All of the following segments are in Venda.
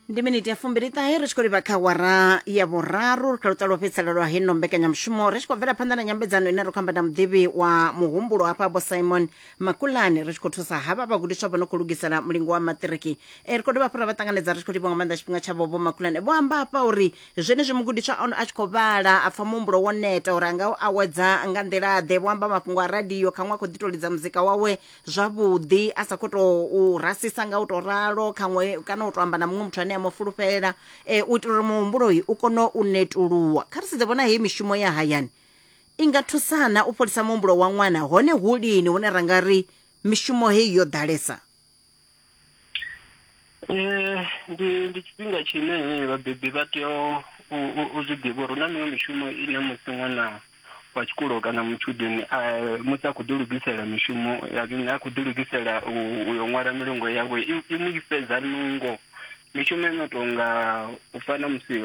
ndi miniti ya fumbiliṱahe ri tshi khou livha kha wara ya vhuraru ri kha luṱa lwo fhedzisela lwa heno mbekanyamushumo ri tshi khou bvela phanḓa na nyambedzano ine ri khou amba na muḓivhi wa muhumbulo hafha vho simon makulani ri tshi khou thusa havha vhagudiswa vho no khou lugisela mulingo wa maṱiriki e ri khou dovha hafhu ra vha ṱanganedza ri tshi khou livha nga maanḓa tshifhinga tshavho vho makulani vho amba hafha uri zwenezwi mugudiswa ono a tshi khou vhala a pfha muhumbulo wo neta uri a nga u awedza nga nḓila-ḓe vho amba mafhungo a radio khaṅwe a khou ḓi tou lidza muzika wawe zwavhuḓi a sa khou tou rasisa nga u tou ralo khaṅwe kana u tou amba na muṅwe muthu ane a mu fulufhela um u itela uri muhumbuloyi u kone u netuluwa kha ri sedze vhona heyi mishumo ya hayani i nga thusana u fholisa muhumbulo wa ṅwana hone hu lini hune ra nga ri mishumo heyi yo ḓalesa Eh, ndi ndi tshifhinga tshine eh, vhabebi vha tea u- u- u- u zwi ḓivha uri hu na miṅwe mishumo ine musi ṅwana wa tshikolo kana mutshudeni a musi a khou ḓi lugisela mishumo ya zwino a khou ḓi lugisela u u yo ṅwala milongo yawe i i mu i fhedza nungo Mishumo i no tou nga u fana musi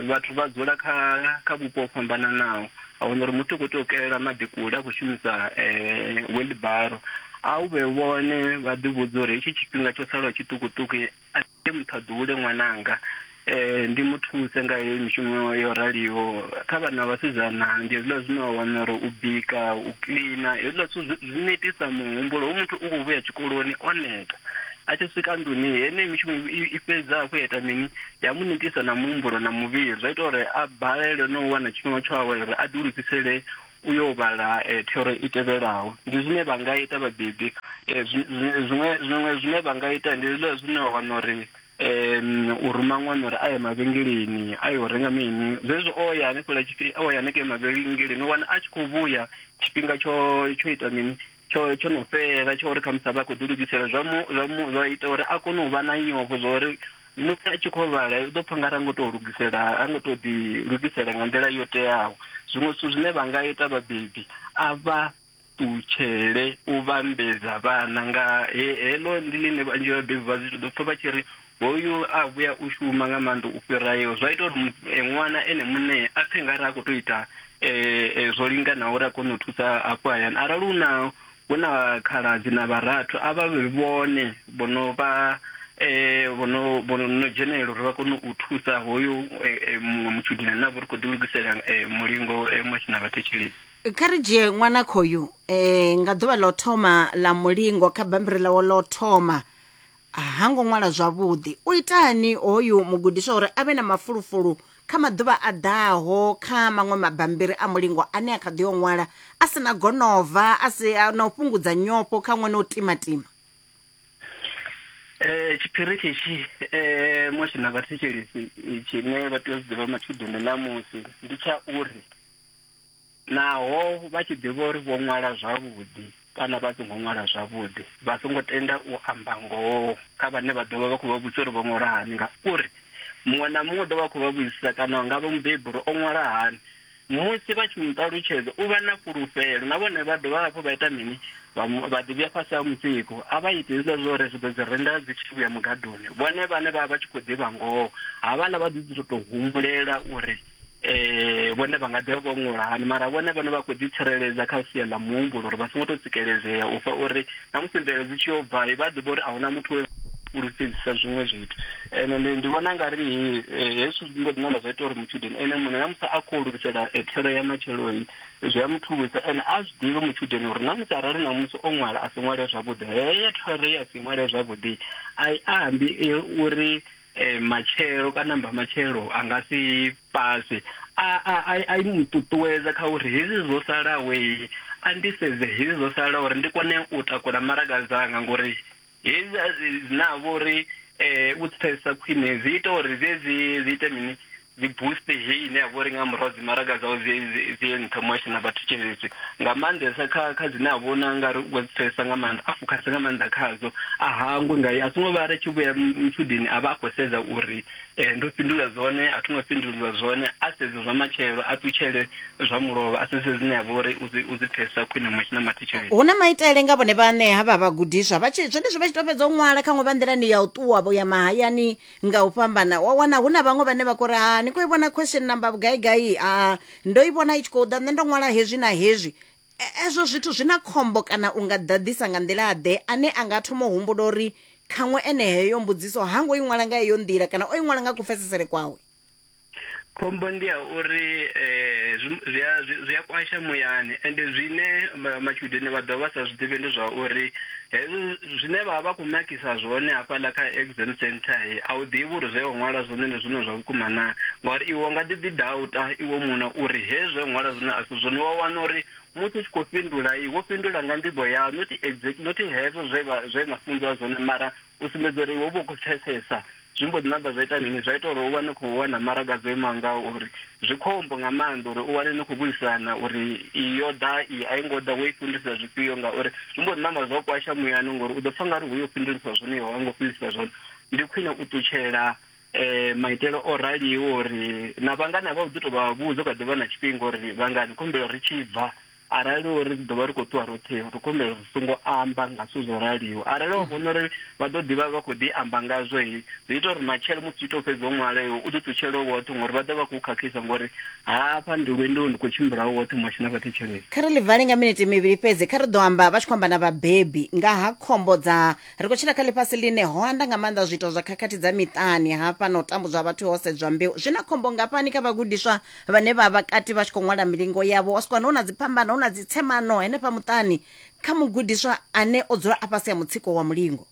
vhathu vha dzula kha kha vhupo ho fhambananaho, a wana uri muthu u khou tea u kelela maḓi kule a khou shumisa wheelbarrow. A u vhe vhone vha ḓi vhudza uri hetshi tshifhinga tsho salaho tshiṱukuṱuku a thi tei muthu a ḓuhule ṅwananga, ndi mu thuse nga heyi mishumo yo raliho. Kha vhana vha vhasidzana ndi hezwiḽa zwine wa wana uri u bika, u kiḽina hezwiḽa zwithu zwi netisa muhumbulo. Hoyu muthu u khou vhuya tshikoloni o neta, A tshi swika nḓuni heneyi mishumo i- i fhedza hafhu ya ita mini ya mu netisa na muhumbulo na muvhili zwa ita uri a balelwe na u wana tshifhinga tsho awela uri a ḓi lugisele u yo vhala eh, thero i tevhelaho ndi zwine vha nga ita vhabebi Eh, zwi- zwi- zwiṅwe zwiṅwe zwine vha nga ita ndi zwiḽa zwine wa wana uri em, u ruma ṅwana uri a ye mavhengeleni a yo renga mini zwezwi o ya hanefhala tshifhi- o ya hanengei mavhengeleni u wana a tshi khou vhuya tshifhinga tsho tsho ita mini tsho tsho no fhela tsho uri khamusi a vha khou ḓi lugisela zwa mu zwa mu zwa ita uri a kone u vha na nyofho zwa uri musi a tshi khou vhala u ḓo pfha nga ra ngo tou lugisela a ngo tou ḓi lugisela nga nḓila yo teaho zwiṅwe zwithu zwine vha nga ita vhabebi a vha ṱutshele u vhambedza vhana nga heḽo ndi ḽine vhanzhi vhabebi vha zwi ḓo pfha vha tshi ri Hoyu a vhuya u shuma nga maanḓa u fhira yo. Zwa ita uri eh, ṅwana ene muṋe a pfhe nga re a khou tou ita eh, eh, zwo linganaho uri a kone u thusa hafho hayani arali hu na hu na khaladzi na vharathu a vha vhe vhone vho no vha eh, vho no vho no dzhenelela uri vha kone u thusa hoyo eh, eh, muṅwe mutshudeni ane a vha uri khou ḓilugisela eh, mulingo eh, musi na vhathetshelesi kha ri dzhie ṅwana khoyu um nga ḓuvha ḽa u thoma ḽa mulingo kha bammbiri ḽawo ḽa u thoma ha ngo ṅwala zwavhuḓi u itani hoyu mugudiswa uri a vhe na mafulufulu kha maḓuvha a ḓaho kha maṅwe mabambiri a mulingo ane a kha ḓi o ṅwala a si na gonova a si na u fhungudza nyofho kha ṅwana o timatima Eh tshipiriki tshi eh moshi na vhathetshelisi tshine vha tea u zwi ḓivha matshudeni ṋamusi ndi tsha uri Naho vha tshi ḓivha uri vho ṅwala zwavhuḓi kana vha songo ṅwala zwavhuḓi, vha songo tenda u amba ngoho kha vhane vha ḓo vha vha khou vha vhudzisa uri vho ṅwala hani, ngauri muṅwe na muṅwe u ḓo vha a khou vha vhudzisa kana nga vha mubebi uri o ṅwala hani. Musi vha tshi mu ṱalutshedza, u vha na fhulufhelo. Na vhone vha dovha hafhu vha ita mini? Vha mu, vha ḓi vhuya fhasi ha mutsiko. A vha iti hezwiḽa zwa uri ri ḓo dzi renda dzi tshi vhuya mugadoni, vhone vhane vha vha vha tshi khou ḓivha ngoho. Havhaḽa vha ḓo ḓi tou tou humbulela uri eh vhone vha nga ḓi vho ṅwala hani mara vhone vhone vha khou ḓi tsireledza kha sia ḽa muhumbulo uri vha songo tou tsikeledzea u fha uri na musi mvelelo dzi tshi yo bva vha ḓivha uri a huna muthu we fhulufhedzisa zwiṅwe zwithu ene ndi ndi vhona nga ri eh, hezwi zwi mbo ḓi namba zwa ita uri mutshudeni ene muṋe na musi a khou lugisela eh, thero ya matsheloni zwi a muthusa ene a zwi ḓivhe mutshudeni uri na musi arali na musi o ṅwala a si ṅwale zwavhuḓi heyo thero ye a si ṅwale zwavhuḓi a i ambi eh, uri eh, matshelo kana mbamatshelo a nga si paswe a a a a mu ṱuṱuwedza kha uri hezwi zwo salaho eh, a ndi sedze hezwi zwo salaho uri ndi kone u takula maraga dzanga ngori hezwi a zwi- zwi na vho uri eh, u pfesa khwine zwi ita uri zwezwi zwi ite mini dzi boost hei ine ya vha uri nga murahu dzi maraga dzawo dzi nṱha mu a tshi na vhathu tshenzhedzi nga maanḓesa kha kha dzine a vhona nga ri wa dzi pfesesa nga maanḓa a fokhasa nga maanḓa khadzo a hangwe nga a songo vha ri tshi vhuya mutshudeni a vha a khou sedza uri um ndo fhindula zwone a thoma fhindulwa zwone a sedze zwa matshelo a ṱutshele zwa mulovha a sedze dzine ya vha uri u dzi pfesesa khwine mu a tshi na mathetshelo hu na maitele nga vhone vhane ha vha vhagudiswa vha tshi zwenezwi vha tshi to fhedza u ṅwala khaṅwe vha nḓilani ya u ṱuwa vho ya mahayani nga u fhambana wa wana hu na vhaṅwe vhane vha kori ha ni khou i vhona question number vhugai gai a ndo i vhona i tshi khou ḓa nṋe ndo ṅwala hezwi na hezwi E- ezwo zwithu zwi na khombo kana u nga ḓaḓisa nga nḓila ḓe ane a nga thoma u humbula uri khaṅwe ene heyo mbudziso ha ngo i ṅwala nga heyo nḓila kana o i ṅwala nga kupfesesele kwawe khombo ndi ya uri eh zwi a zwi a kwasha muyani ende zwine ma- matshudeni vha ḓo vha sa zwi ḓivhi ndi zwa uri hezwi zwine vha vha vha khou makisa zwone hafhaḽa kha exam center he a u ḓivhi uri zwe wa ṅwala zwone ndi zwone zwa vhukuma na ngauri iwe nga ḓi ḓi dauta iwe muṋe uri hezwi zwe wa ṅwala zwone a si zwone wa wana uri musi u tshi khou fhindula i wo fhindula nga nḓivho yau not exact not hezwo zwe vha- zwe na funziwa zwone mara u sumbedza uri iwe u vha u khou pfesesa Zwi mbo ḓi ṋamba zwa ita mini? Zwa ita uri u vha ni khou wana maraga dzo imaho nga uri. Zwi khombo nga maanḓa uri u wane ni khou vhuisana uri iyi yo ḓa, iyi a i ngo ḓa, wo i fhindulisa zwifhio ngauri zwi mbo ḓi ṋamba zwa u kwasha muyani ngori u ḓo pfha nga ri ho yo fhindulisa zwone iwe a u ngo fhindulisa zwone. Ndi khwine u ṱutshela um maitele o raliho uri na vhangana vhau u ḓi tou vha vhudza u kha ḓi vha na tshifhinga uri vhangana khou humbela ri tshi bva, Arali uri ri ḓo vha ri khou ṱuwa roṱhe, ri khou humbela uri ri songo amba nga zwithu zwo raliho. Arali wa vhona uri vha ḓo ḓi vha vha khou ḓi amba ngazwo, zwi ita uri matshelo musi u tshi tou fhedza u ṅwala iwe, u ḓi ṱutshele u woṱhe ngori vha ḓo vha khou khakhisa ngori hafha ndi lwendoni ndi khou tshimbila u woṱhe musi na vha thetshelesi. Kha ri ḽi vale nga minete mivhili fhedzi. Kha ri ḓo amba vha tshi khou amba na vhabebi nga ha khombo dza. Ri khou tshila kha ḽifhasi ḽine ho anda nga maanḓa zwiito zwa khakhathi dza miṱani. Hafha na u tambudzwa ha vhathu ho sedzwa mbeu. Zwi na khombo ngafhani kha vhagudiswa vhane vha vha kati vha tshi khou ṅwala milingo yavho wa swikwana hu na dziphambano hu na dzitsemano henefha muṱani kha mugudiswa ane o dzula a fhasi ha mutsiko wa mulingo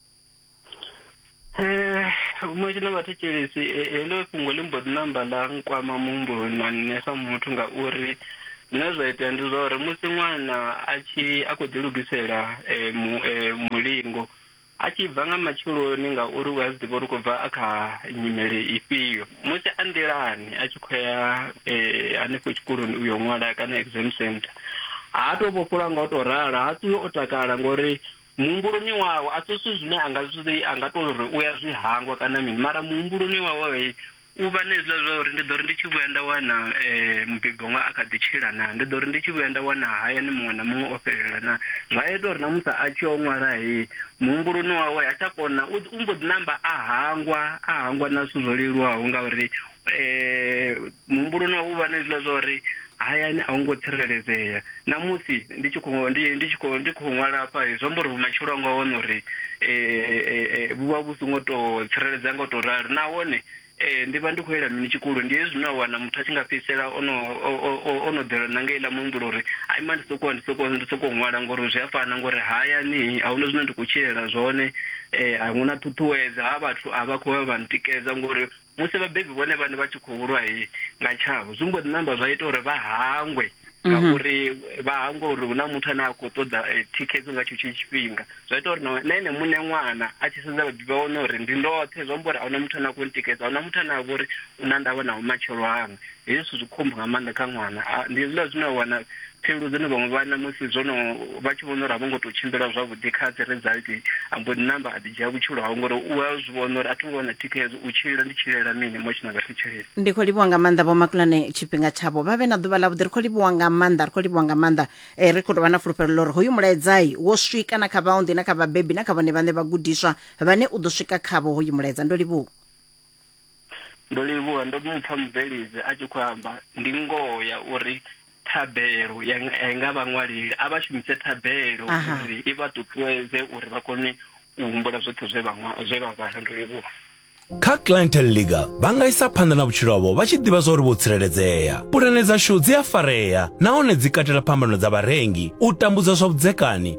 Eh, musi na vhathetshelesi eh, heḽo fhungo ḽi mbo ḓi namba ḽa nkwama muhumbuloni na nṋe sa muthu ngauri zwine zwa itea ndi zwa uri musi ṅwana a tshi a khou ḓilugisela eh, mu- eh, mulingo A tshi bva nga matsheloni ngauri u a zwi ḓivha uri u khou bva a kha nyimele ifhio. Musi a nḓilani a tshi khou ya hanefho tshikoloni u yo ṅwala kana exam centre, ha tou vhofholowa nga u tou ralo, ha ṱuwi o takala ngori muhumbuloni wawe a si zwithu zwine a nga zwi, a nga tou ri u ya zwi hangwa kana mini mara muhumbuloni wawe U vha na hezwiḽa zwa uri ndi ḓo ri ndi tshi vhuya nda wana mubebi wanga a kha ḓi tshila naa, ndi ḓo ri ndi tshi vhuya nda wana hayani muṅwe na muṅwe o fhelela naa. Zwa a ita uri na musi a tshi yo ṅwala heyi, muhumbuloni wawe ha tsha kona, u u mbo ḓi namba a hangwa, a hangwa na zwithu zwo leluwaho ngauri muhumbuloni wawe u vha na hezwiḽa zwa uri hayani a hu ngo tsireledzea namusi ndi tshi khou ndi ndi tshi khou ndi khou ṅwala hafha zwi amba uri vhumatshelo anga hone uri um vhu vha vhu songo tou tsireledzea nga u tou ralo nahone um ndi vha ndi khou yela mini tshikulu ndi hezwi zwine a wana muthu a tshi nga fhedzisela ono o no ḓelwa na nga iḽa muhumbulo uri a ima ndi sokou ndi sokou ndi sokou ṅwala ngori zwi a fana ngori hayani a huna zwine ndi khou tshilela zwone um a huna ṱhuṱhuwedza ha vhathu a vha khou vha vha ntikedza ngori musi vhabebi vhone vhane vha tshi khou lwa nga tshavho zwi mbo ḓi namba zwa ita uri vha hangwe mhm. ngauri vha hangwe uri hu na muthu ane a khou ṱoḓa eh, thikhedzo nga tshetsho tshifhinga zwa ita uri na ene muṋe ṅwana a tshi sedza vhabebi vha wane uri ndi ndoṱhe zwi amba uri a huna muthu ane a khou ntikedza a huna muthu ane a vha uri u na ndavha na vhumatshelo hanga Hezwi zwithu zwi khombo nga maanḓa kha ṅwana. A, ndi hezwiḽa zwine wa wana pfhelo dzine vhaṅwe vhana musi zwo no vha tshi vhona uri a vho ngo tou tshimbila zwavhuḓi kha dzi result, a mbo ḓi namba a ḓi dzhia vhutshilo hawe ngori u a zwi vhona uri a tho ngo wana thikhedzo, u tshilela ndi tshilela mini much na vhari tshilela. Ndi khou livhuwa nga maanḓa Vho Makulane tshifhinga tshavho. Vha vhe na ḓuvha ḽavhuḓi. Ri khou livhuwa nga maanḓa, ri khou livhuwa nga maanḓa. Eh, ri khou tou vha na fulufhelo ḽa uri hoyu mulaedza wo swika na kha vhaunḓi na kha vhabebi na kha vhone vhaṋe vhagudiswa vhane u ḓo swika khavho hoyu mulaedza. Ndo livhuwa. Ndo livhuwa ndo mu pfa mubveledzi a tshi khou amba, ndi ngoho ya uri thabelo ya nga- ya nga vhaṅwaleli a vha shumise thabelo Aha. uri i vha ṱuṱuwedze uri vha kone u humbula zwoṱhe zwe vha ṅwa- zwe vha vhala. Ndo livhuwa. Kha Clientele Legal, vha nga isa phanḓa na vhutshilo havho vha tshi ḓivha zwa uri vho tsireledzea. Pulane dzashu dzi a farea nahone dzi katela phambano dza vharengi, u tambudzwa zwa vhudzekani,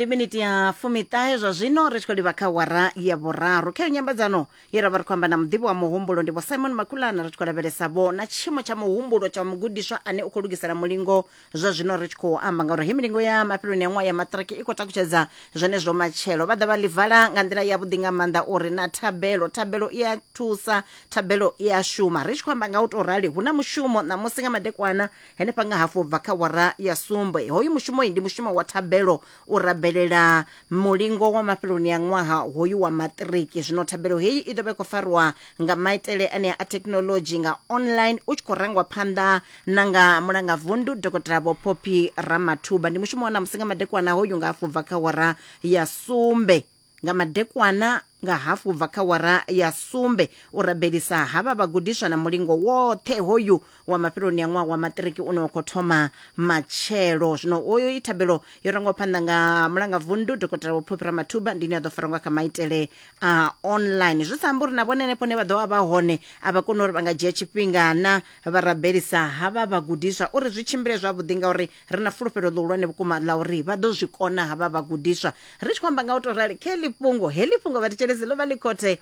ndi miniti ya fumiṱahe zwa zwino ri tshi khou livha kha wara ya vhuraru kha yo nyambedzano ye ra vha ri khou amba na muḓivhi wa muhumbulo ndi vho simon makulana ri tshi khou lavhelesavho na tshiimo tsha muhumbulo tsha mugudiswa ane u khou lugisela mulingo zwa zwino ri tshi khou amba ngauri he milingo ya mafheloni ya ṅwaha ya maṱiriki i khou takutshedza zwenezwo matshelo vha ḓa vha ḽi vala nga nḓila yavhuḓi nga maanḓa uri na thabelo thabelo i a thusa thabelo i a shuma ri tshi khou amba nga u tou rali hu na mushumo ṋamusi nga madekwana henefha nga hafu bva kha wara ya sumbe hoyu mushumo ndi mushumo wa thabelo u rabelela mulingo wa mafheloni a ṅwaha hoyu wa maṱiriki zwino thabelo heyi i ḓo vha i khou farwa nga maitele anea a thekhinolodzhi nga online u tshi khou rangwa phanḓa na nga mulangavundu dokotela vho poppy ramathuba ndi mushumo wa ṋamusi nga madekwana hoyu nga afho bva kha hora ya sumbe Nga madekwana nga hafu ubva kha wara ya sumbe, u rabelisa ha vha vhagudiswa na mulingo woṱhe hoyu wa mafheloni a ṅwaha wa maṱiriki une wa khou thoma matshelo. Zwino hoyo i thabelo yo rangwa phanḓa nga mulangavundu Dokotela Vho Phophi Ramathuba, ndi ine ya ḓo farwa nga kha maitele a online. Zwi sa ambi uri na vhone henefho hune vha ḓo vha vha hone a vha koni uri vha nga dzhia tshifhinga na vha rabelisa ha vha vhagudiswa uri zwi tshimbile zwavhuḓi ngauri ri na fulufhelo ḽihulwane vhukuma ḽa uri vha ḓo zwi kona havha vhagudiswa ri tshi khou amba nga u tou rali khe ḽi fhungo heḽi fhungo vhathetshelezi ḽo vha ḽi khothe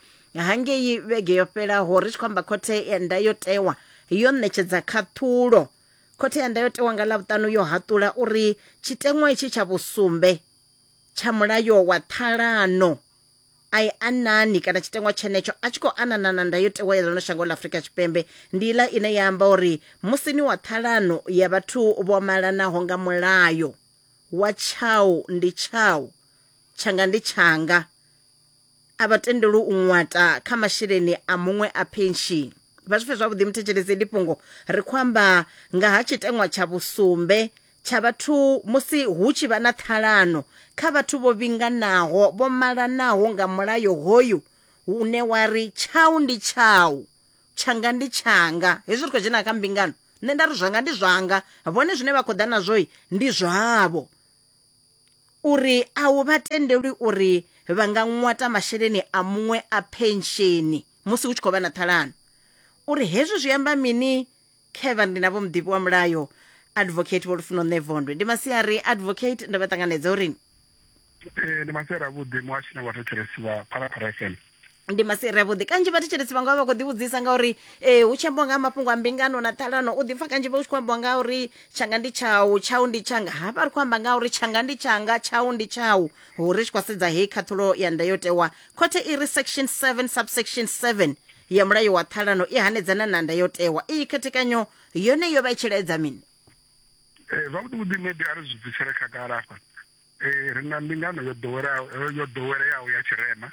hangei vhege yo fhelaho ri tshi khou amba khothe ya ndayotewa yo ṋetshedza khaṱhulo khothe ya ndayotewa nga ḽavhuṱanu yo haṱula uri tshiteṅwa itshi tsha vhusumbe tsha mulayo wa ṱhalano a i anani kana tshiteṅwa tshenetsho a tshi khou anana na ndayotewa ya ḽino shango ḽa afurika tshipembe ndi iḽa ine ya amba uri musi ni wa ṱhalano ya vhathu vho malanaho nga mulayo wa tshau ndi tshau tshanga ndi tshanga a vha tendelwi u ṅwata kha masheleni a muṅwe a penshini vha zwi pfe zwavhuḓi muthetshelesi ndi fhungo ri khou amba nga ha tshiteṅwa tsha vhusumbe tsha vhathu musi hu tshi vha na ṱhalano kha vhathu vho vhinganaho vho malanaho nga mulayo hoyu une wa ri tshau ndi tshau tshanga ndi tshanga hezwi ri khou dzhena kha mbingano nṋe nda ri zwanga ndi zwanga vhone zwine vha khou ḓa nazwo ndi zwavho uri a hu vha tendelwi uri vha nga ṅwata masheleni a muṅwe a pensheni musi hu tshi khou vha na ṱhalano uri hezwi zwi amba mini Kevin ndi na vho muḓivhi wa mulayo advocate vho lufuno nṋe vondwe ndi masiari advocate ndo vha ṱanganedza uri Eh, ndi masiari avhuḓi muhashi na vhathetshelesi vha phalaphala fm ndi masiari avhuḓi kanzhi vhathetshelesi vhanga vha vha khou ḓivhudzisa ngauri um hu tshi ambiwa nga ha mafhungo a mbingano na ṱhalano u ḓipfa kanzhi vha u tshi khou ambiwa nga uri tshanga ndi tshau tshau ndi tshanga hafha ri khou amba nga uri tshanga ndi tshanga tshau ndi tshau hu ri tshi khou sedza heyi khathulo ya ndayotewa khothe i ri section 7 subsection 7 ya mulayo wa ṱhalano i hanedzana na ndayotewa iyi khethekanyo yone yo vha i tshi laedza mini Eh, zwavhuḓi vhuḓi maybe a ri zwi bvisele khagala afha Eh, ri na mbingano yo ḓoweleaho- eh, yo ḓoweleaho ya tshirema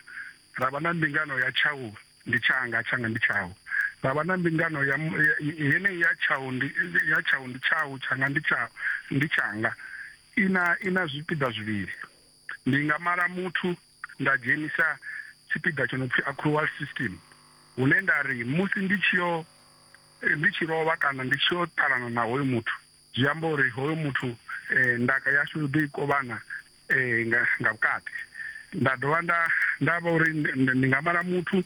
ra vha na mbingano ya tshau ndi tshanga tshanga ndi tshau ra vha na mbingano ya mu- ya- yeneyi ya tshau ndi ya tshau ndi tshau tshanga ndi tshau ndi tshanga ina ina zwipiḓa zwivhili Ndi nga mala muthu nda dzhenisa tshipiḓa tsho no pfi accrual system hune nda ri musi ndi tshi yo ndi tshi lovha kana ndi tshi yo ṱalana na hoyo muthu zwi amba uri hoyo muthu ndaka yashu ri ḓo i kovhana nga nga vhukati. Nda dovha nda nda vha uri ndi nga mala muthu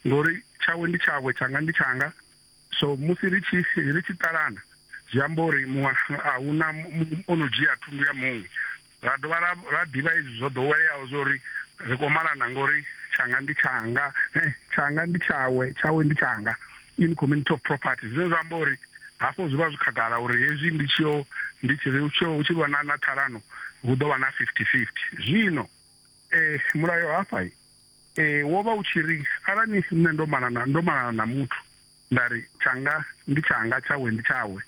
ngori tshawe ndi tshawe tshanga ndi tshanga. So musi ri tshi ri tshi ṱalana zwi amba uri muṅwe a huna o no dzhia thundu ya muṅwe ra dovha ra ra ḓivha izwi zwo ḓoweleaho zwa uri ri khou malana ngori tshanga ndi tshanga eh, tshanga ndi tshawe tshawe ndi tshanga in community of property zwine zwa amba uri hafho zwi vha zwi khagala uri hezwi ndi tshio ndi tshi ri tshio hu tshi vha na na ṱhalano hu ḓo vha na 50 50 zwino eh mulayo hafha Ee, wo vha u tshi ri, Arali nṋe ndo malana, ndo malana na muthu, nda ri, Tshanga ndi tshanga, tshawe ndi tshawe,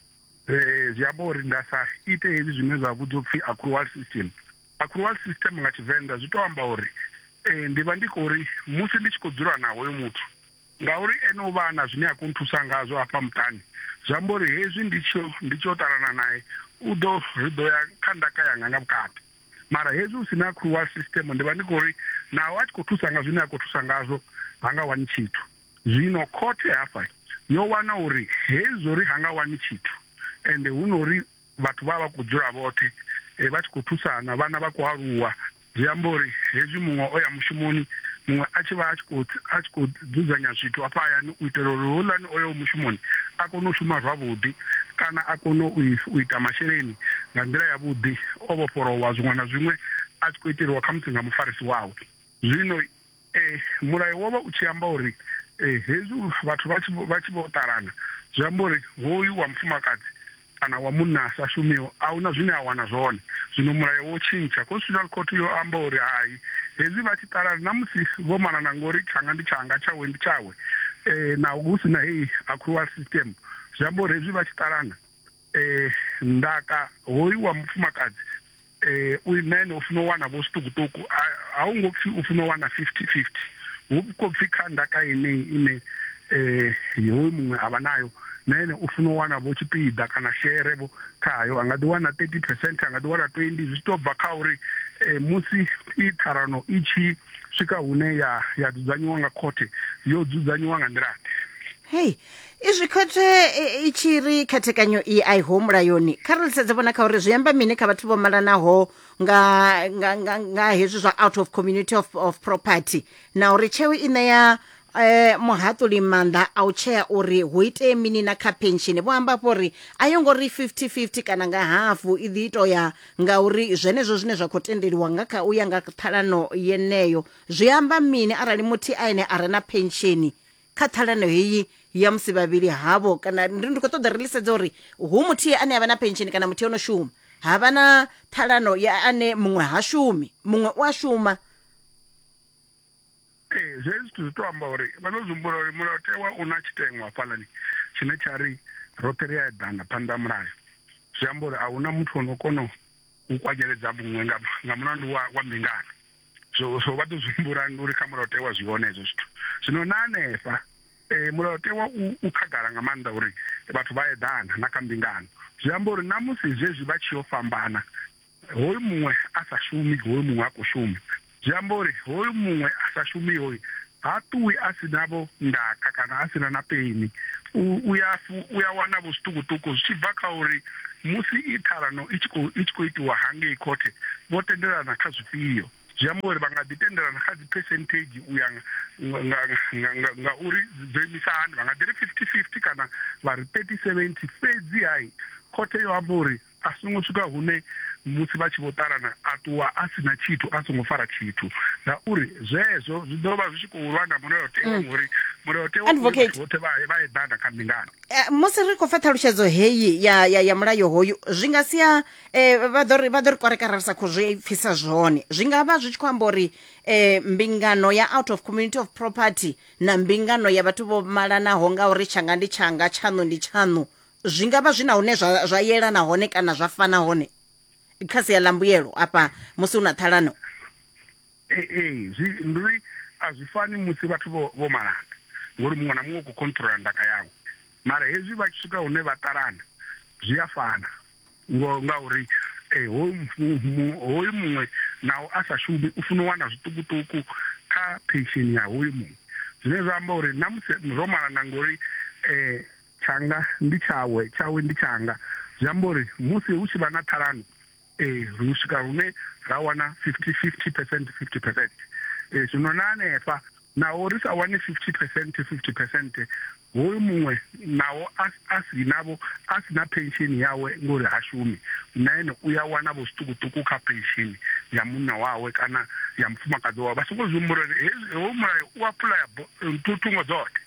zwi amba uri nda sa ite hezwi zwine zwa vhudzwa u pfi accrual system. Accrual system nga Tshivenḓa zwi tou amba uri ndi vha ndi khou ri musi ndi tshi khou dzula na hoyo muthu, ngauri ene u vha a na zwine a khou nthusa ngazwo hafha muṱani, zwi amba uri hezwi ndi tshi yo ṱalana nae, u ḓo ri ḓo ya kha ndaka yanga nga vhukati. mara hezwi hu si na crual system ndi vha ndi khou ri naho a tshi khou thusa nga zwine a khou thusa ngazwo ha nga wani tshithu zwino khothe hafha yo wana uri hezwo ri ha nga wani tshithu ende hu no ri vhathu vha vha khou dzula vhoṱhe eh, vha tshi khou thusana vhana vha khou aluwa zwi amba uri hezwi muṅwe o ya mushumoni muṅwe a tshi vha a tshi khou dzudzanya zwithu hafha hayani u itela uri houḽani o yaho mushumoni a kone u shuma zwavhuḓi kana a kone u ita masheleni nga nḓila yavhuḓi o vhofholowa zwiṅwe na zwiṅwe a tshi khou iteliwa khamusi nga mufarisi wawe. Zwino eh, mulayo wo vha u tshi amba uri eh, hezwi vhathu vha tshi vho ṱalana zwi amba uri hoyu wa mufumakadzi kana wa munna a sa shumiho, a hu na zwine a wana zwone. Zwino mulayo wo tshintsha. Constitutional Court yo amba uri hai, hezwi vha tshi ṱalana na musi vho malana ngori tshanga ndi tshanga, tshawe ndi tshawe, naho hu si na heyi accrual system, zwi amba uri hezwi vha tshi ṱalana, ndaka hoyu wa mufumakadzi, eh u imene u funa u wana vho zwiṱukuṱuku a hu ngo pfi u funa u wana 50 50 hu khou pfi kha ndaka yeneyi ine eh hoyu muṅwe a vha nayo na ene u funa u wana vho tshipiḓa kana shere vho khayo a nga ḓi wana 30 percent a nga ḓi wana 20 zwi tou bva kha uri eh, musi i ṱharano i tshi swika hune ya ya dzudzanyiwa nga khothe yo dzudzanyiwa nga nḓilaḓe hei izwi khothe i tshi ri khethekanyo i a i ho mulayoni kha ri lisedze vhona kha uri zwi amba mini kha vhathu vho malanaho nga, nga, nga, nga hezwi zwa out of community of, of property na uri tsheo i ṋea eh, muhaṱuli maanḓa a u tshea uri hu itee mini na kha penshini vho amba fho uri a yo ngo ri 50-50 kana nga hafu i ḓi ito ya nga uri zwenezwo zwine zwa khou tendeliwa nga kha u ya nga ṱhalano yeneyo zwi amba mini arali muthihi a ene a re na penshini kha ṱhalano heyi ya musi vhavhili havho kana ndi ndi khou ṱoḓa ri lisedze uri hu muthihi ane a vha na pensheni kana muthihi ono shuma ha vha na ṱhalano ya ane muṅwe ha shumi muṅwe u a shuma ee zwe zwithu zwi to amba uri vha ḓo zumbula uri mulayotewa u na tshiteṅwa fhalani tshine tsha ri roṱhe ri a eḓana phanḓa ha mulayo zwi amba uri a huna muthu o no kona u kwanyeledza muṅwe nga nga mulandu wa wa mbingano so so vha ḓo zwi humbula uri kha mulayotewa zwi hone hezwo zwithu zwino na hanefha eh mulayotewa u khagala nga maanḓa uri vhathu vha eḓana na kha mbingano zwi amba uri na musi zwezwi vha tshi yo fhambana hoyu muṅwe a sa shumi hoyu muṅwe a khou shuma zwi amba uri hoyu muṅwe a sa shumi hoyu Ha ṱuwi a si na-vho ndaka kana a si na na peni. U, u, ya, u ya wana-vho zwiṱukuṱuku zwi tshi bva kha uri musi i ṱhalano i tshi khou, i tshi khou itiwa hangei khothe vho tendelana kha zwifhio. Zwi amba uri vha nga ḓi tendelana kha dziphesenthedzhi u ya nga, nga, nga, nga, nga uri dzo imisa hani. Vha nga ḓi ri 50-50 kana vha ri 30-70. Fhedzi-ha khothe yo amba uri. A songo swika hune musi vha tshi vho ṱalana a ṱuwa a si na tshithu a songo fara tshithu, ngauri zwezwo zwi ḓo vha zwi tshi khou lwa na mulayotewa mm. ngori mulayotewa Advocate. vhoṱhe vha vha eḓana kha mbingano eh, musi ri khou pfa ṱhalutshedzo heyi ya, ya, ya mulayo hoyu zwi nga sia eh, vha ḓo ri vha ḓo ri kwarekara ri sa khou zwi pfisa zwone zwi nga vha zwi tshi khou amba uri eh, mbingano ya out of community of property na mbingano ya vhathu vho malanaho nga uri tshanga ndi tshanga tshaṋu ndi tshaṋu zwi nga vha zwi na hune zwa, zwa yelana hone kana zwa fana hone kha sia ḽa mbuyelo afha musi hu na ṱhalano ee ee zwi ndi uri a zwi fani musi vhathu vho vho malana ngori muṅwe na muṅwe u khou controla ndaka yawe mara hezwi vha tshi swika hune vha ṱalana zwi a fana ngo ngauri eh, hoyu mfu- mu- hoyu muṅwe naho a sa shumi u funa u wana zwiṱukuṱuku kha pension ya hoyu muṅwe zwine zwa amba uri na musi ro malana ngori um Tshanga ndi tshawe, tshawe ndi tshanga. Zwi amba uri musi hu tshi vha na ṱhalano, ri swika hune ra wana 50, 50 percent, 50 percent. Zwino na hanefha, naho ri sa wani 50 percent, 50 percent, hoyu muṅwe naho a, a si navho, a si na pensheni yawe ngori ha shumi, na ene u ya wana-vho zwiṱukuṱuku kha pensheni ya munna wawe kana ya mufumakadzi wawe. Vha songo zwi humbula uri hezwi, hoyu mulayo u apuḽaya bo, Thu, thungo dzoṱhe.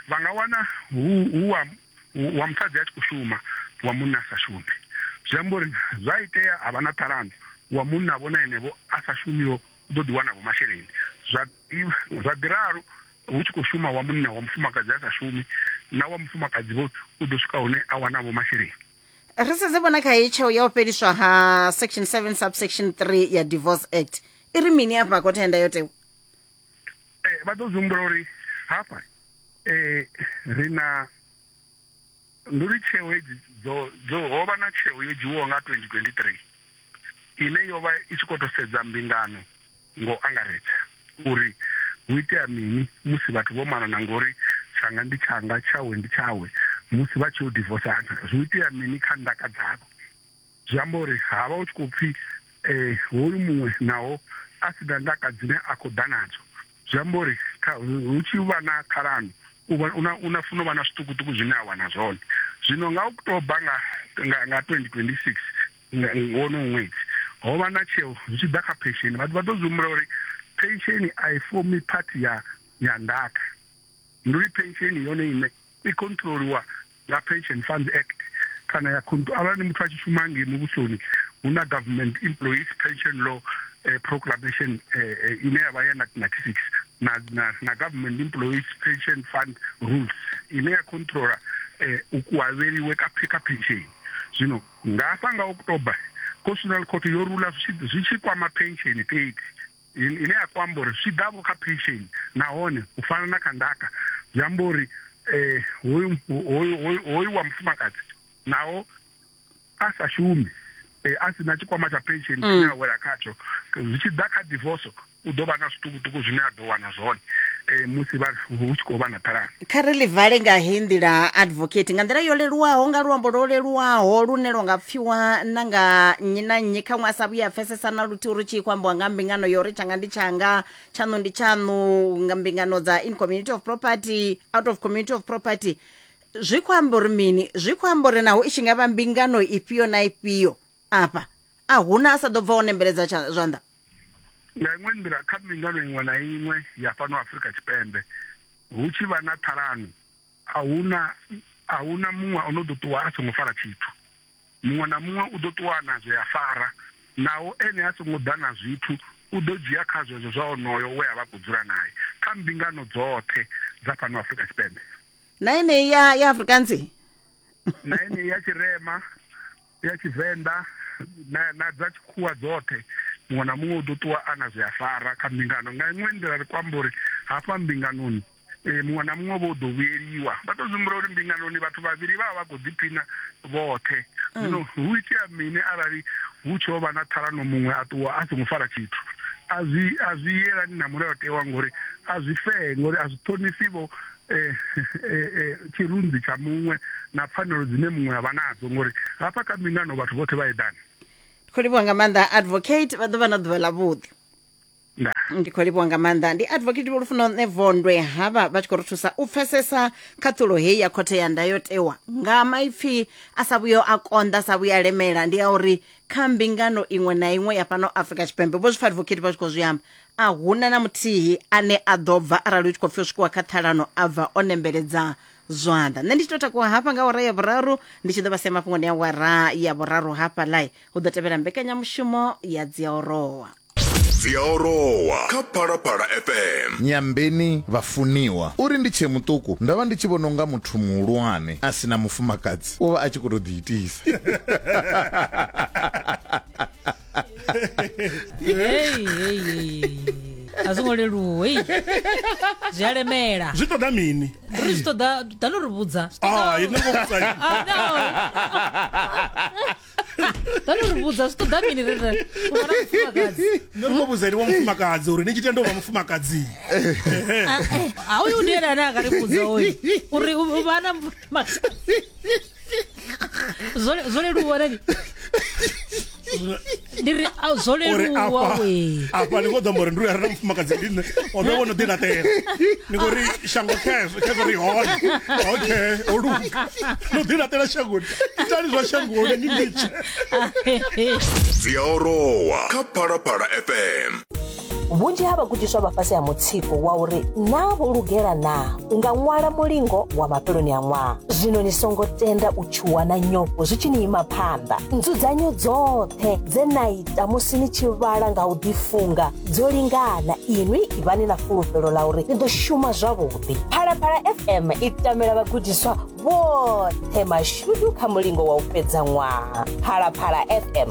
Vha nga wana hu, hu wa, wa musadzi a tshi khou shuma, wa munna a sa shume. Zwi amba uri zwa itea ha vha na ṱhalano, wa munna vho na enevho a sa shumiho u ḓo ḓi wanavho masheleni. Zwa, zwa ḓi ralo hu tshi khou shuma wa munna, wa mufumakadzi a sa shumi, na wa mufumakadzi vho u ḓo swika hune a wanavho masheleni. Ri sedze vhona kha heyi tsheo ya u fheliswa ha section 7 subsection 3 ya Divorce Act i ri mini afha khothe ya ndayotewa. eh, vha ḓo zwihumbula uri hafha eh, ri na ndi uri tsheo hedzi dzo ho vha na tsheo yo dzhiwaho nga 2023 ine yo vha i tshi khou tou sedza mbingano ngo angaredza uri hu itea mini musi vhathu vho malana ngori tshanga ndi tshanga tshawe ndi tshawe musi vha tshi yo divosana zwi itea mini kha ndaka dzavho Zwi amba uri ha vha hu tshi khou pfi hoyu muṅwe naho a si na ndaka dzine a khou ḓa nadzo, zwi amba uri hu tshi vha na ṱhalano u na funa u vha na zwiṱukuṱuku zwine a wana zwone. Zwino nga u tou bva nga 2026 nga wonowu ṅwedzi, ho vha na tsheo zwi tshi ḓa kha phensheni. Vhathu vha ḓo zwi humbula uri phensheni a i fomi phathi ya ndaka. ndi uri pensheni yone ine i controliwa nga pension funds act kana ya arali muthu a tshi shuma ngei muvhusoni hu na government employees pension law eh, proclamation eh, eh, ine ya vha ya 1996 na, na, na government employees pension fund rules ine ya controla eh, u kuhavheliwe ka, ka pensheni zwino nga hafha nga october constitutional court yo rula zwi tshi kwama pensheni fhedzi ine ya khou amba uri zwi ḓa vho kha pension nahone u fana na kha ndaka zwi amba uri hoyu hoyu hoyu wa mufumakadzi naho a sa shumi a si na tshikwama tsha pension mm. tshine a wela khatsho zwi tshi ḓa kha divorce u ḓo vha na zwiṱukuṱuku zwine a ḓo wana zwone musi hu tshi khou vha na ṱhalano kha ri ḽi vale nga heyi nḓila advocate nga nḓila yo leluwaho nga luambo lwo leluwaho lune lwo nga pfiwa na nga nnyi na nnyi khaṅwe a sa vhuya a pfesesa na luthihi uri tshi khou ambiwa nga mbingano yo ri tshanga ndi tshanga tshaṋu ndi tshaṋu nga mbingano dza in community of property out of community of property zwi khou amba uri mini zwi khou amba uri naho i tshi nga vha mbingano ifhio na ifhio afha a huna a sa ḓo bva o nembeledza tsha- zwanḓa Nga iṅwe nḓila, kha mbingano iṅwe na iṅwe ya fhano Afrika Tshipembe, hu tshi vha na ṱhalano, a hu na a hu na muṅwe o no ḓo ṱuwa a songo fara tshithu. Muṅwe na muṅwe u ḓo ṱuwa na zwe a fara, naho ene a songo ḓa na zwithu, u ḓo dzhia kha zwezwo zwa onoyo we a vha a khou dzula nae. Kha mbingano dzoṱhe dza fhano Afrika Tshipembe. Na yeneyi ya ya Afrikaans. na yeneyi ya Tshirema. ya Tshivenḓa na, na dza tshikhuwa dzoṱhe muṅwe na muṅwe u ḓo ṱuwa a na zwi a fara kha mbingano nga iṅwe nḓila ri kwamba uri hafha mbinganoni e, muṅwe na muṅwe vho ḓo vhuyeliwa vha tou zwimbula uri mbinganoni vhathu vhavhili vha vha vha khou ḓiphina vhoṱhe mm. zwino hu itea mini arali hu tsho vha na ṱhalano muṅwe a ṱuwa a songo fara tshithu a zwi a zwi yelani na mulayotewa ngori a zwi fee ngori a zwi ṱhonifhi vho eh, eh, eh, tshirunzi tsha muṅwe na pfanelo dzine muṅwe a vha nadzo ngori hafha kha mbingano vhathu vhoṱhe vha eḓana ndi khou livhuwa nga maanḓa advocate vha ḓo vha na ḓuvha ḽa vhuḓi ndi khou livhuwa nga maanḓa ndi advocate vholufuno nṋe vondwe havha vha tshi khou ri thusa u pfesesa khaṱhulo heyi ya khothe ya ndayotewa nga maipfi a sa vhuyo a konḓa sa vhuya lemela ndi ya uri kha mbingano iṅwe na iṅwe ya fhano afrika tshipembe vho zwipfa advocate vha tshi khou zwi amba A huna na muthihi ane a ḓo bva arali hu tshi khou pfi u swikiwa kha ṱhalano a bva o nembeledza zwanḓa nṋe ndi tshi tou takuwa hafha nga awara ya vhuraru ndi tshi ḓo vha sia mafhungoni a awara ya vhuraru hafha lai hu ḓo tevhela mbekanyamushumo ya dziaorowa dziaorowa kha phalaphala fm Nyambeni vhafuniwa. Uri ndi tshee muṱuku ndo vha ndi tshi vhona unga muthu muhulwane a si na mufumakadzi u vha a tshi khou tou ḓiitisa. Hey, hey, hey. a zwo ngo leluwa hey. zwi a lemela zwi ṱoḓa mini ri zwi ṱoḓa ḓa no ri vhudza Ah, ini ngo vhudza ini. Ah, no. ḓa no ri vhudza zwi ṱoḓa mini ri ri u fana mufumakadzi Nṋe ri khou vhudza ene wa mufumakadzi uri ni tshi tenda u vha mufumakadzi a uyu ndi ene ane a nga ri vhudza oyu uri u- u vha na mufumakadzi zwo leluwa rali ndi ri a- zwo uri leluwa afha we afha ni khou ḓo amba uri ndi uya rena mufumakadzi ndi nṋe o ndo vho no ḓi laṱela ni khou ri shango khezwo khezwo ri hone okay o luga no ḓi laṱela shangoni itani zwa shangoni ni litshe dzi a orowa kha phalaphala fm vhunzhi ha vhagudiswa vha fhasi ha mutsiko wa uri naa vho lugela naa u nga ṅwala mulingo wa mafheloni a ṅwaha zwino ni songo tenda u tshuwa na nyofho zwi tshi ni ima phanḓa nzudzanyo dzoṱhe dze na ita musi ni tshi vhala nga u ḓifunga dzo lingana inwi ivhani na fulufhelo ḽa uri ni ḓo shuma zwavhuḓi phalaphala fm i tamela vhagudiswa vhoṱhe mashudu kha mulingo wa u fhedza ṅwaha phalaphala fm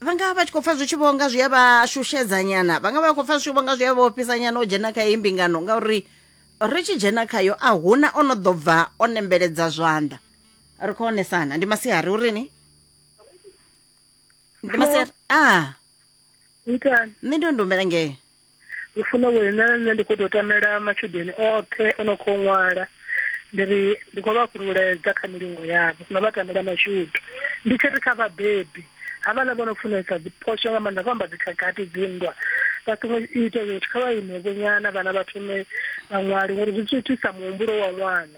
vha nga vha vha tshi khou pfa zwi tshi vhonga zwi a vha shushedza nyana vha nga vha vha khou pfa zwi tshi vhonga zwi a vha ofhisa nyana o dzhena kha heyi mbingano ngauri ri tshi dzhena khayo a huna o no ḓo bva o nembeledza zwanḓa ri khou onesana ndi masiari uri ni ndi masiari a ah. nṋe ndi o ndi humbela ngee ndi funa uri na nṋe ndi khou tou tamela matshudeni oṱhe o no khou ṅwala ndi ri ndi khou vha fhululedza kha milingo yavho na vha tamela mashudu ndi tshi ri kha vhabebi havhaḽa vho no funesa dziphosho nga maanḓa vho amba dzikhakhathi dzinndwa vha songo ita zwithu kha vha imevho nyana vhana vha thome vha ṅwale ngori zwi thithisa muhumbulo wa ṅwana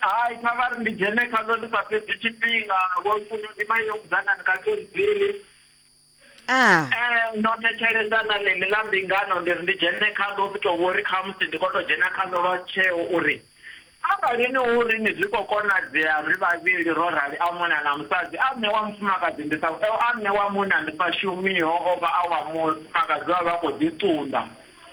Hai, kha vha ri ndi dzhene khaḽo ndi sa fhedzi tshifhinga, vho Ntunu ndi vha Young Dzanani kha Kenzile. Aa. Ee, ndo thetshelesa na ḽeḽi ḽa mbingano ndi ri ndi dzhene khaḽo ndi tou vho ri khamusi ndi khou tou dzhena khaḽo lwa tsheo uri arali ni hu ri ni zwi khou konadzea ri vhavhili ro rali a munna na musadzi a nṋe wa mufumakadzi ndi sa, a nṋe wa munna ndi sa shumiho o vha a wa mufumakadzi vha vha vha khou ḓi ṱunḓa.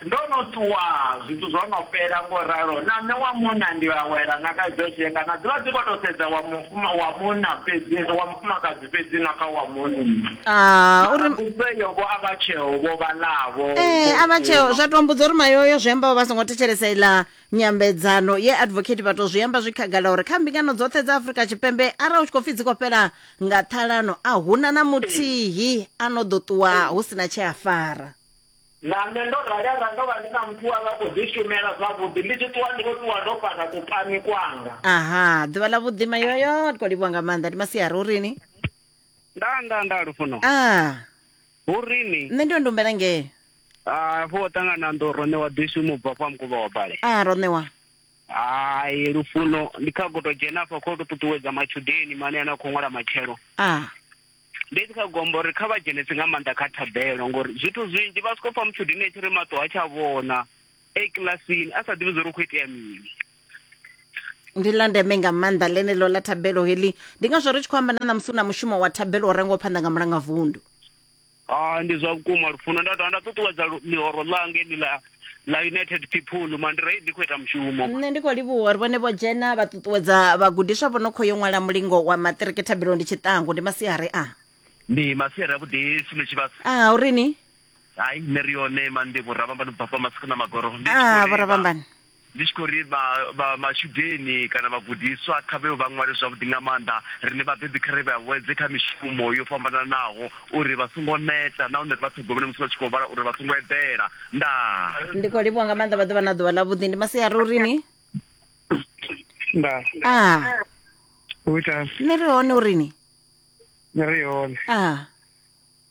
Ndo no ṱuwa, zwithu zwo no fhela, ngo ralo na nṋe wa munna ndi a wela na kha idzo tshika, na dzivha dzi kho to sedza wa mufuma wa munna fhedzi wa mufumakadzi fhedzi na kha wa munna. Aa uri. Mbudzo iyo vho a vha tsheo vho vhaḽavho. Ee a vha tsheo zwa to mbudza uri mayoyo zwi amba vha songo thetshelesa iḽa nyambedzano ye advocate vha to zwi amba zwi khagala uri kha mbingano dzoṱhe dza Afrika Tshipembe arali u tshi kho pfi dzi kho fhela nga ṱhalano a huna na muthihi ano ḓo ṱuwa hu sina tshe a fara. Na nṋe ndo rali arali ndo vha ndi na muthu we a vha a khou ḓishumela zwavhuḓi, ndi tshi ṱuwa ndi vho ṱuwa ndo fara kupani kwanga. Aha, ḓuvha ḽa vhuḓi mayoyo ri khou livhuwa nga maanḓa ndi masiari hu rini nda nda nda lufuno a hu rini nṋe ndo ndumbela ngee Ah, fho ṱangana ndo rone wa ḓi shuma u bva fha mukovha wa bale a ro ṋewa hai lufuno ndi kha goto dzhena afha kho to ṱuṱuwedza matshudeni mane ane a khou ṅwala matshelo a ndi tshi kha gombo uri kha vha dzhenese nga maanḓa kha thabelo ngori zwithu zwinzhi vha soko pfa mutshudini tshi ri maṱo ha tsha vhona e kilasini a sa ḓivhi zwo ri khou itea mini ndi ḽa ndeme nga maanḓa ḽeneḽo ḽa thabelo heḽi ndi ngazwo ri tshi khou amba na ṋamusi u na mushumo wa thabelo u rengaho phanḓa nga mulangavundu a ndi zwa vhukuma lufuno nda dovha nda ṱuṱuwedza ḽihoro ḽange ḽi ḽa ḽa united people mandrei ndi khou ita mushumo nṋe ndi khou livhuwa uri vhone vho dzhena vha ṱuṱuwedza vhagudiswa vho no khou yo ṅwala mulingo wa maṱiriki thabelo ndi tshiṱangu ndi masiari a ndi masiari avhuḓi sume tshivhasa a uri ni hai nṋe ri yone mandi vhurabamba ni bvafha masiku na magoro ndi tshi khou a lila. vhoravhambani Ndi tshi khou ri vha, vha, matshudeni kana vhagudiswa kha vhe vha ṅwale zwavhuḓi nga maanḓa, riṋe vhabebi kha ri vha vhuedze kha mishumo yo fhambananaho uri vha songo neta nahone ri vha ṱhogomele musi vha tshi khou vhala uri vha songo eḓela. Ndaa. ndi khou livhuwa nga maanḓa vha ḓo vha na ḓuvha ḽavhuḓi ndi masiari uri ni Nda, a u ita nṋe ri hone uri ni ri hone. a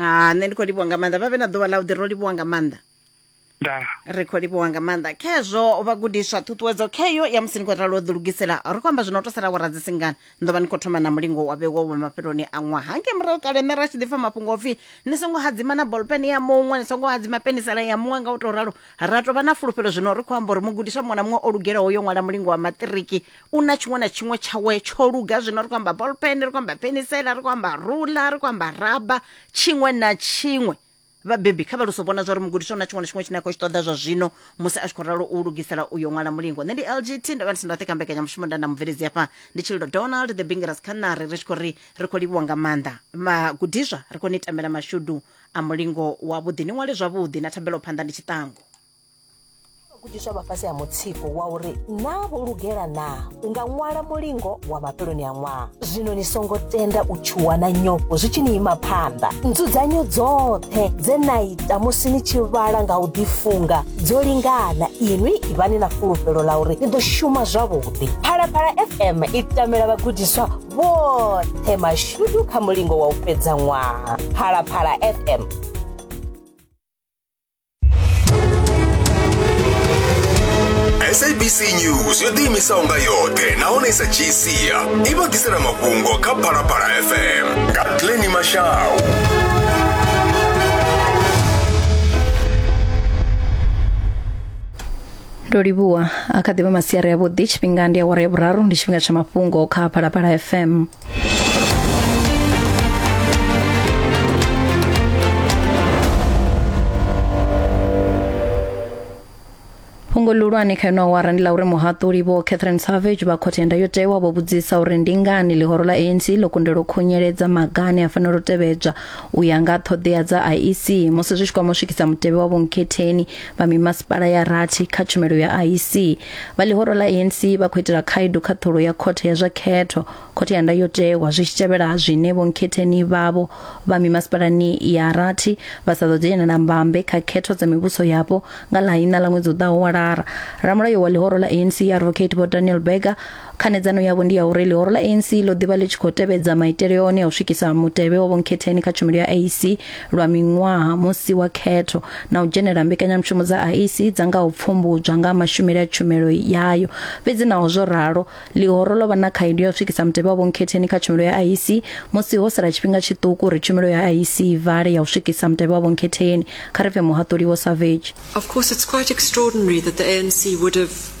ha nṋe ndi khou livhuwa nga maanḓa vha vhe na ḓuvha ḽa u ḓi ro livhuwa nga maanḓa nda ri khou livhuwa nga maanḓa khezwo vhagudiswa ṱhuṱhuwedzo kheyo ya musi ni khou ralo ḓi lugisela ri khou amba zwino to sala wara dzi singana ni ḓo vha ni khou thoma na mulingo wa vhewo wa mafheloni a ṅwaha ngei murahu kale nṋe ra tshi ḓi pfa mafhungo opfi ni songo hadzima na bolpen ya muṅwe ni songo hadzima penisela ya muṅwe nga u tou ralo ra tou vha na fulufhelo zwino ri khou amba uri mugudiswa muṅwe na muṅwe o lugelaho yo ṅwala mulingo wa maṱiriki u na tshiṅwe na tshiṅwe tshawe tsho luga zwino ri khou amba bolpen ri khou amba penisela ri khou amba rula ri khou amba raba tshiṅwe na tshiṅwe vhabebi kha vha luso vhona zwa uri mugudiswa u na tshiṅwe na tshiṅwe tshine a khou tshi ṱoḓa zwa zwino musi a tshi khou ralo u lugisela uyo ṅwala mulingo nṋe ndi lgt ndo vha ndi si ndoṱhe kha mbekanyamushumo nda na mubveledzi hafha ndi tshililo donald the bingeras khanari ri tshi khou ri ri khou livhuwa nga maanḓa magudiswa ri khou ni tambela mashudu a mulingo wavhuḓi ni ṅwale zwavhuḓi na thabelo phanḓa ndi tshiṱangu gudiswa vha fhasi ha mutsiko wa uri naa vho lugela naa u nga ṅwala mulingo wa mafheloni a ṅwaha zwino ni songo tenda u tshuwa na nyofho zwi tshi ni ima phanḓa nzudzanyo dzoṱhe dze na ita musi ni tshi vhala nga u ḓifunga dzo lingana inwi ivhani na fulufhelo ḽa uri ni ḓo shuma zwavhuḓi phalaphala fm i tamela vhagudiswa vhoṱhe mashudu kha mulingo wa u fhedza ṅwaha phalaphala fm sabc news yo ḓiimisaho nga yoṱhe nahone i sa dzhii sia i vha ḓisela mafhungo kha phalaphala fm nga pleni mashau ndo livhuwa a kha ḓivha masiari avhuḓi tshifhinga ndi awara ya vhuraru ndi tshifhinga tsha mafhungo kha phalaphala fm fhungo ḽihulwane kha ino awara ndi ḽa uri muhaṱuli vho catherine savage vha khothe ya ndayotewa vho vhudzisa uri ndi ngani ḽihoro ḽa anc ḽo kundelwa u khunyeledza maga ane a fanela u tevhedzwa u ya nga ṱhoḓea dza iec musi zwi tshi kwama u swikisa mutevhe wa vhonkhetheni vha mimasipala ya rathi kha tshumelo ya iec Vha ḽihoro ḽa ANC vha khou itela khaedu khaṱhulo ya khothe ya zwa khetho, khothe ya ndayotewa zwi tshi tevhela zwine vhonkhetheni vhavho vha mimasipalani ya rathi vha sa ḓo dzhenela mbambe kha khetho dza mivhuso yapo nga ḽa ina ḽa ṅwedzi u ḓaho wa lara. Ramulayo wa ḽihoro ḽa ANC Advocate Vho Daniel Berger Khanedzano yavho ndi ya uri ḽihoro ḽa ANC ḽo ḓivha ḽi tshi khou tevhedza maitele one a u swikisa mutevhe wa vhonkhetheni kha tshumelo ya IEC lwa miṅwaha musi wa khetho na u dzhenela mbekanyamushumo dza IEC dza nga u pfumbudzwa nga mashumele a tshumelo yayo. Fhedzi naho zwo ralo, ḽihoro ḽo vha na khaedu ya u swikisa mutevhe wa vhonkhetheni kha tshumelo ya IEC musi ho sala tshifhinga tshiṱuku uri tshumelo ya IEC i vale ya u swikisa mutevhe wa vhonkhetheni. Kha ri pfe muhaṱuli Vho Savage. Of course, it's quite extraordinary that the ANC would have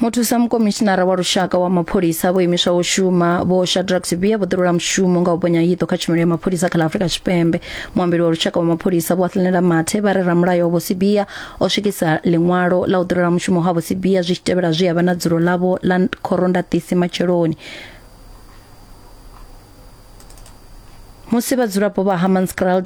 muthusa mukomishinara wa lushaka wa mapholisa vho imiswa u shuma vho shadrack sibia vho ḓirula mushumo nga u bonya hiṱo kha tshumelo ya mapholisa kha ḽa afurika tshipembe muambeli wa lushaka wa mapholisa vho athlinela mathe vha re ramulayo vho sibia o swikisa ḽiṅwalo ḽa u ḓirula mushumo ha vho sibia zwi tshi tevhela zwi havha na dzulo ḽavho ḽa khorondaṱisi matsheloni musi vhadzulapo vha hammanskrald